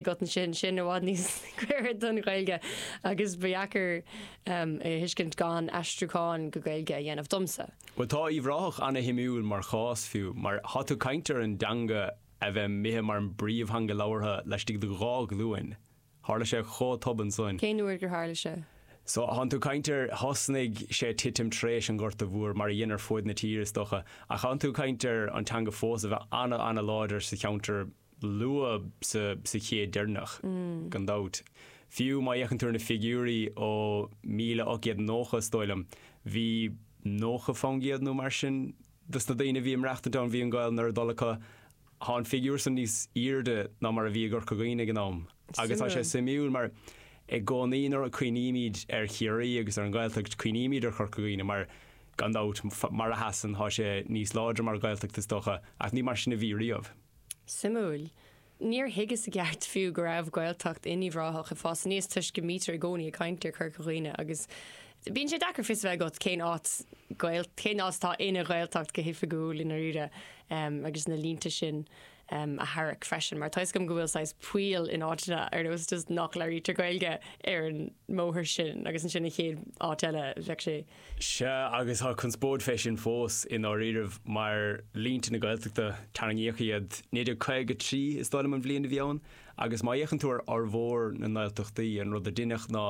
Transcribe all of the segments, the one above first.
agat ansin, sin i bhfad níos gaire don Ghaeilge agus ba dheacair é a thuiscint gan aistriúchán go Gaeilge a dhéanamh domsa. Bhuel, tá Uíbh Ráthach ana-shuimiúil mar chás fiú, mar tá tú ag caint ar an dteanga a bheith imithe mar an bpríomhtheanga labhartha laistigh de dhá ghlúin. Tharla sé chomh tobann san. Cén uair gur tharla sé? So, tá tú ag caint ar, thosnaigh sé ag titim tar éis an Ghorta Mhóir, mar a dhein ar fud na tíre is docha, ach tá tú ag caint ar an teanga fós a bheith ana-ana-láidir sa cheantar, luath sa chéad deireanach, gan dabht. Fiú má fhéachann tú ar na figiúirí ó míle ocht gcéad nócha is dóigh liom, bhí nócha fán gcéad nó mar sin de sna daoine a bhí ag maireachtaint ann, bhí an Ghaelainn ar a dtoil acu. Thá an figiúir san níos aoirde ná mar a bhí i gCorca Dhuibhne ag an am. Agus tá sé suimiúil mar i gcónaí nuair a chuimhnímíd ar Chiarraí agus ar an Ghaeltacht cuimhnímíd ar Chorca Dhuibhne mar gan dabht, mar a sheasann, thá sé níos láidre mar Ghaeltacht is dócha, ach ní mar sin a bhí riamh. Suimiúil. Níor thuigeas i gceart fiú go raibh Gaeltacht in Uíbh Ráthach ag fás aníos toisc go mbítear i gcónaí ag caint ar Chorca Dhuibhne agus bíonn sé deacair fios a bheith agat cén áit cén áit atá ina Ghaeltacht go hoifigiúil i ndáiríre agus na línte sin a tharrac freisin mar tá fhios agam go bhfuil saghas poill in áiteanna ar nós just nach labhraítear Gaeilge ar an mbóthar sin agus ansin an chéad áit eile bheadh sé Sea, agus tá conspóid fé sin fós, i ndáiríribh, mar línte na Gaeltachta, tarraingíodh iad 1953, is dóigh liom an bhliain a bhí ann, agus má fhéachann tú ar fhormhór na nGaeltachtaí, an rud a deineadh ná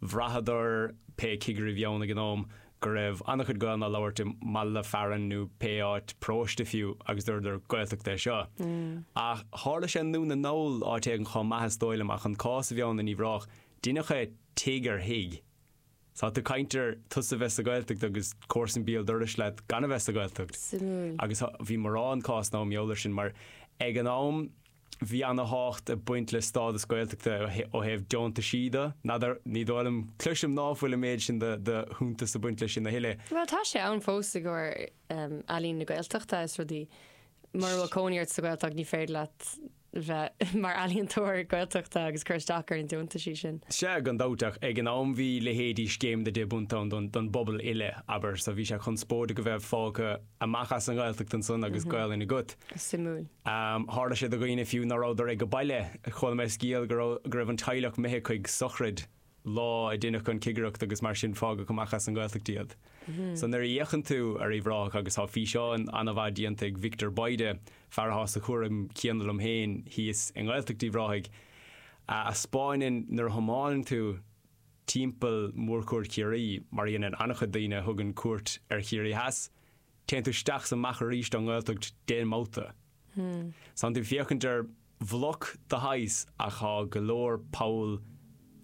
bhraitheadar, pé cigire a bhí ann ag an am, go raibh an-chuid Gaeilne á labhairt i mbaile fearainn nó pé áit, paróiste fiú, agus dúradar, Gaeltacht é seo. Ach tharla sé i nDún na nGall, áit éigin chomh maith, is dóigh liom, ach an cás a bhí ann in Uíbh Ráthach, deineadh é tigh ar thigh, Tá tú ag caint ar tusa bheith sa Ghaeltacht agus comharsan béal dorais leat gan a bheith sa Ghaeltacht. Suimiúil. Agus bhí mórán cásanna mb'eol ar sin mar ag an am bhí ana-thábhacht ag baint le stádas Gaeltachta ó thaobh deontaisí do. N'fheadar, ní dóigh liom, cloisim ná fuil an méid sin do shuntas ag baint le sin a thuilleadh. Bhuel tá sé ann fós i gcomhair Ealaín na Gaeltachta is rudaí. Mura bhfuil cónaí ort sa Ghaeltacht ní féidir leat, bheith mar ealaíontóir Gaeltachta agus cur isteach ar na deontaisí sin. Sea, gan dabht, ach ag an am bhí leithéidí Scéim na Deich bPunt ann don don bpobal uile, abair, so bhí sé conspóideach a bheith fágtha amach as an nGaeltacht ansan agus Gaolainn agat. Suimiúil. Tharla sé do dhaoine fiú ná rabhadar ag a' baile. Chuala mé scéal go raibh go raibh an teaghlach imithe chuig sochraid lá a deineadh an cigireacht agus mar sin fágadh amach as an Ghaeltacht iad. So nuair a fhéachann tú ar Uíbh Ráthach agus tá físeán an-mhaith déanta ag Victor Bayda, fear atá sa chúram céanna liom féin thíos i nGaeltacht Uíbh Ráthaigh, a 'speáineann nuair a thiomáineann tú timpeall Mhórchuaird Chiarraí mar a dhéanann an-chuid daoine a thugann cuairt ar Chiarraí Theas, téann tú isteach is amach arís ón nGaeltacht deich mbabhta. Tá'n tú féachaint ar bhloc de shaghas ach thá go leor poll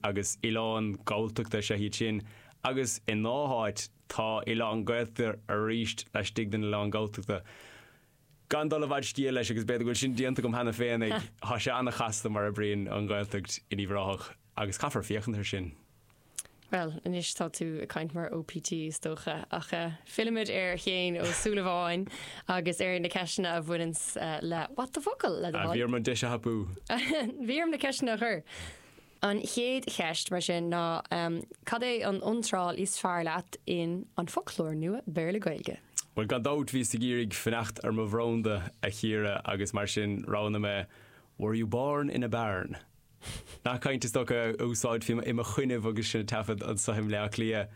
agus oileáin Galltachta, is ea iad sin, agus i ndhá háit tá oileán Gaeltachta aríst laistigh den oileán Galltachta. Gan dul i bhfad scéal leis, agus b'fhéidir go bhfuil sin déanta agam cheana féin, thá sé ana-chasta mar oibríonn an Ghaeltacht in Uíbh Ráthach. Agus caithfear féachaint ar sin. Bhuel, anois tá tú ag caint mar OPT is dócha, ach eh, fillimid ar Shéaghan Ó Súilleabháin agus ar na ceisteanna a bhaineanns le What the focal? le do thoil. Bhí orm an deis a thapú. Bhí orm na ceisteanna a chur. An chéad cheist, mar sin, ná cad é an iontráil is fearr leat in An Foclóir Nua Béarla-Gaeilge? Bhuel, gan dabht, bhíos ag iarraidh fanacht ar mo bhranda, a Chiara, agus mar sin roghnaigh mé Were you born in a barn? Nath cainte is dócha a úsáidfí im' choinnibh agus sinn ag taifead anso i mBleá Cliath.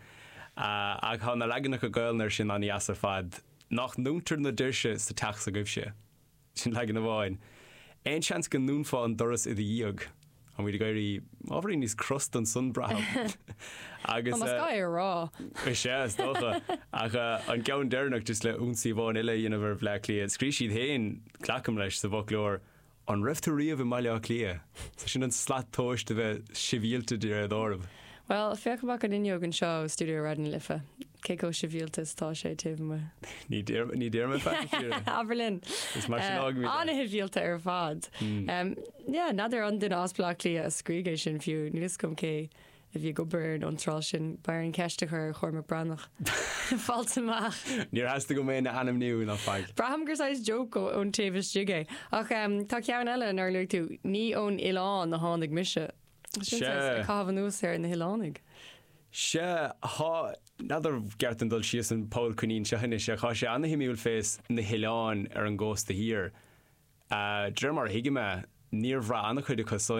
Ach thá na leaganacha Gaolainne ar sin an-dheas ar fad. Nách ndúntar na doirse sa teach s'agaibhse? Sin leagan amháin. Aon seans go ndúnfá an doras i do dhiaidh? Táimíd ag éirí ábhairín níos crosta ansan, braithim. Agus. Más gá é a rá. Is ea, is dócha. Ach an ceann deireanach, just le ionsaí amháin eile a dhéanamh ar Bhleá Cliath, scrígh siad féin, glacaim leis, sa bhfoclóir, An raibh tú riamh i mBaile Átha Cliath? Sin an slat tomhais a bheith sibhialta de réir dealraimh. Bhuel, féach amach an fhuinneog anseo ó stiúideo Raidió na Life, cé chomh sibhialta is atá sé taobh amuigh. Ní deir, ní deir mé faic a Chiara. Abair linn. Is mar sin a fhágaimid é. An-shibhialta ar fad. Yeah, n'fheadar an duine as Baile Átha Cliath a scrígh é sin fiú, níl 'fhios agam cé a bhí ag obair ar an iontráil sin, b'fhearr an cheist a chur ar Chormac Breathnach fáilt amach. Níor theastaigh uaim é a ainmniú ná faic. Braithim gur saghas joke ón taobh istigh é. Ach tá ceann eile nár luaigh tú, Ní ón oileán a tháinig mise. Sin saghas ag caitheamh anuas ar na hoileánaigh. Sea, thá, n'fheadar an ceart dom dul síos an poll coinín seo anois, ach thá sé ana-shuimiúil fés na hoileáin ar an gcósta thiar. D'réir mar a thuigim é, níor bhraith ana-chuid acu san,